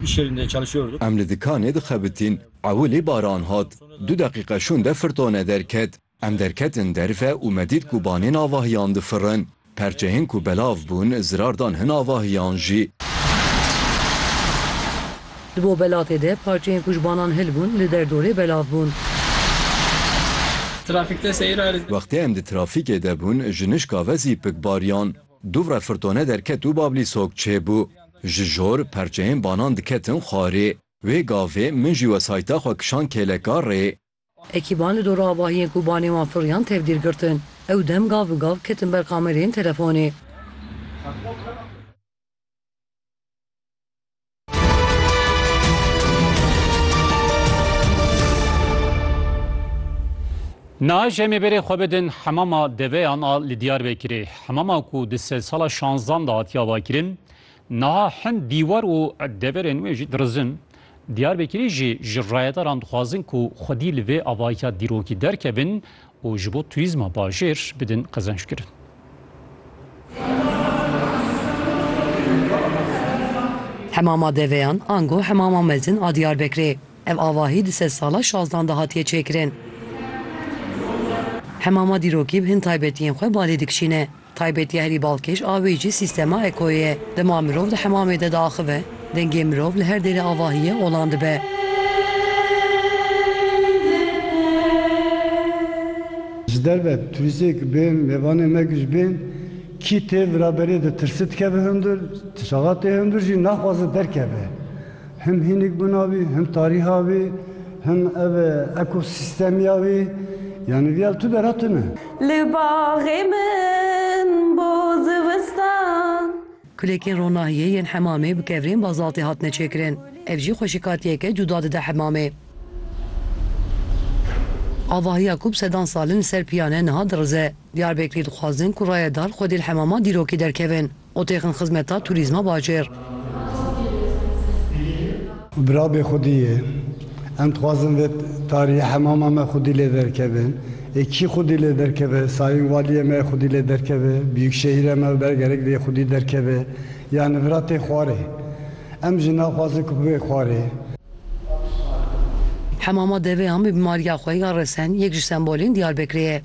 İş yerinde çalışıyorduk. Em li dikanê dixebitîn, ewilî baran hat. Du deqîqe şûnde firtone derket. Em derketin derve û me dît ku banên avahiyan difirin. Perçehên ku belav bûn zirar dan hin avahiyan jî. Di bo belatê de parçeyên ku ji banan hil bûn li derdorê belav bûn. Trafîkte seyir a. Wextê em di trafîkê de bûn ji nişka ve zî pik bariyan. Dûvre firtone derket û Bablî sok çêbû. Ji jor, perçeyên banan diketin xwarê. Wê gavê min jî wesayta xwe kişand kêleka rê. Ekîban li dora avahiyên ku banê wan firiyan tevgîr girtin. Ew dem gav bi gav ketin ber kamereyên telefonê. Niha ji em ê berê xwe bidin hemama deveyan a li Diyarbekirê. Hemama ku di sedsala şanzdan de hatiya vakirin, niha hin dîwar û deverên wê jî dirizin. Diyarbekirî jî ji rayedaran dixwazin ku xwedî li vê avahiya dîrokî derkevin û ji bo turîzma bajêr bidin qezenckirin. Hemama Deveyan, ango Hemama Mezin a Diyarbekirê, ev avahî di sed sala şazdan de hatiye çêkirin. Hemama dîrokî bi hin taybetiyên xwe balê dikişîne. Taybetî herî balkêş a wî jî sîstema ekoyê ye. Dema mirov di hemamê de diaxive, dengê mirov li her dêrê avahiyê olan dibe. Ji derve turîstêk bên, mêvanên me ku jî bên, kî tê viraberê ditirse dikeve hundir, tişaxa tê hundir jî naxwaze derkeve. Him hînik bûna wî, him tarîha wî, him ev ekosîstemiya wî, yanî vîya li tu bera tune. Li baxê min bo zivistan. Kulekên ronahiyê yên hemamê bi kevirên bazaltê hatine çêkirin. Ev jî xweşikatiyeke cuda dide hemamê. Avahiya ku bi sedan sal in li ser piyane niha dirize. Diyarbekirî dixwazin ku rayedar xwedî li hemama dîrokê derkevin. Qotêxên xizmeta turîzma bajêr. Bira bê xwedî yê. Em dixwazin vê tarîyê hemama me xwedî lê derkeve. Ê kî xwedî lê derkeve? Sayîn Walîyê me yê xwedî lê derkeve, Biyûkşehîrê me ber gerek vê yê xwedî derkeve. Yanî vira tê xwarê. Em jî naxwazin ku bibê xwarê. Hemama deveyan bi bîmarîya xwe ya resen yek ji sembolên Diyarbekirê ye.